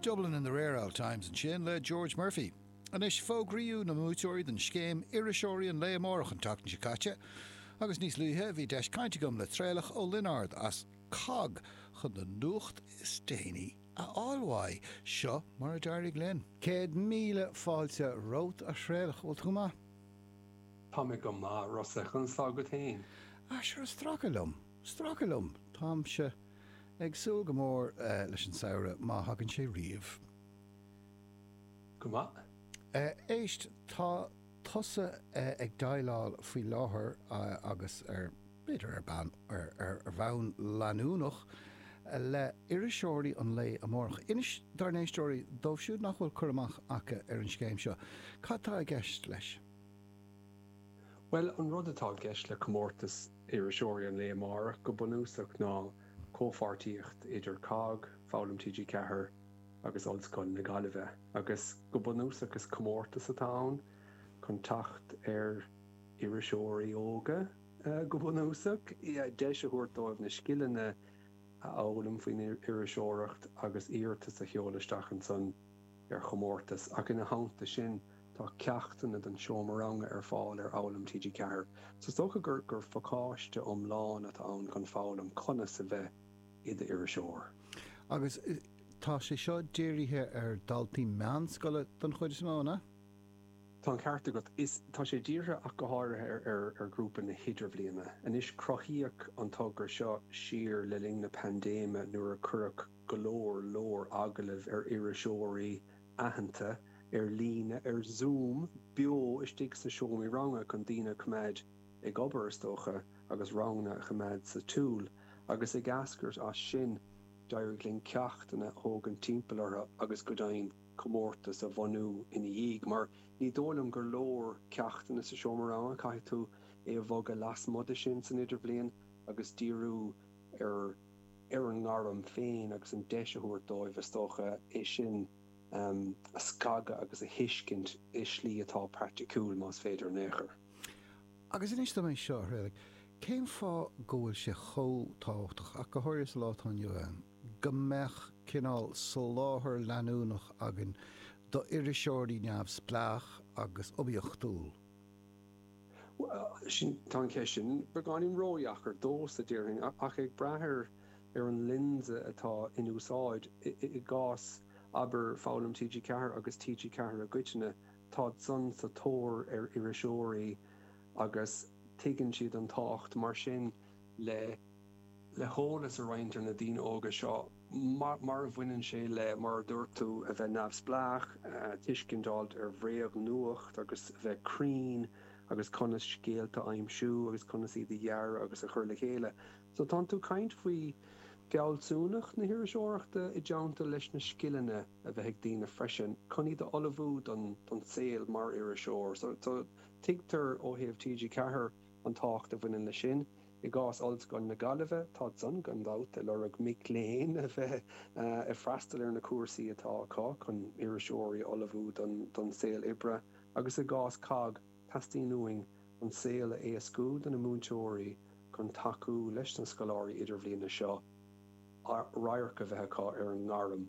Dublin in the Rare Old Times ansin le George Murphy. Anois fógraíodh na buaiteoirí don scéim 'Iriseoirí an Lae Amárach' an tseachtain seo caite agus níos luaithe bhí deis caint agam le Traolach Ó Lionáird as COGG chun an nuacht is déanaí a fháil uaidh. Seo mar a d'éirigh linn. Céad míle fáilte romhat, a Thraolach. Bhfuil tú maith? Tá mé go maith, Rossa. Conas tá agat féin? Ah, sure, stracadh liom. Stracadh liom. Táimse. Ag súil go mór leis an samhradh, má thagann sé riamh. Go maith. Éist, tá tusa ag déileáil faoi láthair agus ar, b'fhéidir ar bhonn leanúnach, le iriseoirí an lae amárach. Inis dár n-éisteoirí, dóibh siúd nach bhfuil cur amach acu ar an scéim seo, cad tá i gceist leis? Bhuel, an rud atá i gceist le comórtas. iriseoirí an lae amárach go bunúsach ná comhpháirtíocht idir COGG, Foghlaim TG4 agus Ollscoil na Gaillimhe, agus go bunúsach is comórtas atá ann chun teacht ar iriseoirí óga, go bunúsach, deis a thabhairt dóibh na scileanna a fhoghlaim faoin iriseoireacht agus iarratas a sheoladh isteach ansan. ar chomórtas, ach ina theannta sin tá ceachtanna don seomra ranga ar fáil ar Fhoghlaim TG4. So is dócha gur phacáiste iomlán atá ann chun foghlaim conas a bheith i d'iriseoir. Agus tá sé seo dírithe ar daltaí meánscoile don chuid is mó, an ea? Tá an ceart agat. Is tá sé dírithe ach go háirithe ar ghrúpa na hidirbhliana. Anois cruthaíodh an togra seo siar le linn na paindéime nuair a cuireadh. go leor leor agallamh ar iriseoirí aitheanta ar líne, ar Zoom, beo istigh sna seomraí ranga chun daoine a choimeád ag obair, is dócha, agus ranganna a choimeád sa tsiúl. Agus ag eascairt as sin, d'éirigh linn ceachtanna a thógaint timpeall orthu agus, go deimhin, comórtas a bhunú ina dhiaidh. Mar ní dóigh liom gur leor ceachtanna sa seomra ranga, caithfidh tú é a bhogadh lasmuigh de sin san idirbhliain agus díriú ar. ar an ngairm féin agus an deis a thabhairt dóibh, is dócha, é sin a scagadh agus a thuiscint i slí atá praiticiúil, más féidir in aon chor. Agus inis dom é seo, a Thraolaigh, cén fáth go bhfuil sé chomh tábhachtach, ach go háirithe sa lá atá inniu ann, go mbeadh cineál soláthar leanúnach againn d'iriseoirí neamhspleách agus oibiachtúil? Sin, tá an cheist sin beagáinín ródheacair domhsa, a déarfainn, ach ag brath ar ar an lionsa atá in úsáid. I gcás, abair, Foghlaim TG4 agus TG4 i gcoitinne, táid-san sa tóir ar iriseoirí agus tuigeann siad an tábhacht, mar sin, le. le heolas a roinnt ar na daoine óga seo mar a bhaineann sé le, mar a dúirt tú, a bheith neamhspleách, tuiscint a fháilt ar bhréagnuacht agus a bheith cruinn agus conas scéalta a aimsiú agus conas iad a dhearadh agus a chur le chéile. So tá tú ag caint faoi fealsúnacht na hiriseoireachta i dteannta leis na scileanna a bheith ag daoine freisin chun iad a ullmhú don saol mar iriseoir. So tuigtear ó thaobh TG4, An tábhacht a bhaineann leis sin, I gcás Ollscoil na Gaillimhe, tá siadsan gan dabht ag lorg mic léinn a bheith ag freastal ar na cúrsaí atá acu chun iriseoirí a ullmhú don saol oibre agus i gcás COGG, teastaíonn uainn an saol a éascú do na múinteoirí chun tacú leis na scoláirí idirbhliana seo radharc a bheith acu ar an ngairm.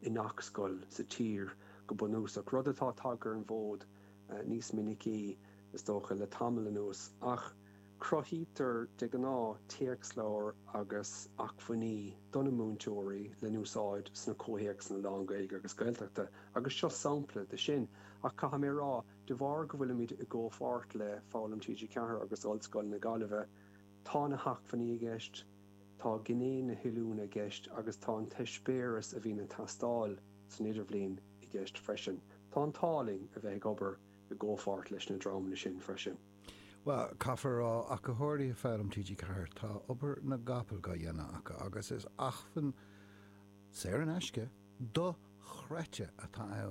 i ngach scoil sa tír go bunúsach, rud atá tagtha ar an bhfód níos minicí, is dócha, le tamall anuas, ach cruthaítear de ghnáth téacsleabhair agus acmhainní do na múinteoirí le n-úsáid sna comhthéacsanna lán-Ghaeilge agus Gaeltachta agus seo sampla de sin. Ach caithfidh mé a rá, de bharr go bhfuilimid i gcomhpháirt le Foghlaim TG4 agus Ollscoil na Gaillimhe, tá gné na n-acmhainní i gceist, Tá gné na hoiliúna i gceist agus tá an t-eispéireas a bhíonn ag teastáil san idirbhliain i gceist freisin. Tá an t-ádh linn a bheith ag obair i gcomhpháirt leis na dreamanna sin freisin. Bhuel, caithfear a rá, ach go háirithe Foghlaim TG4, tá obair na gcapall dhá dhéanamh acu agus is acmhainn, saor in aisce, do-chreidte atá ann.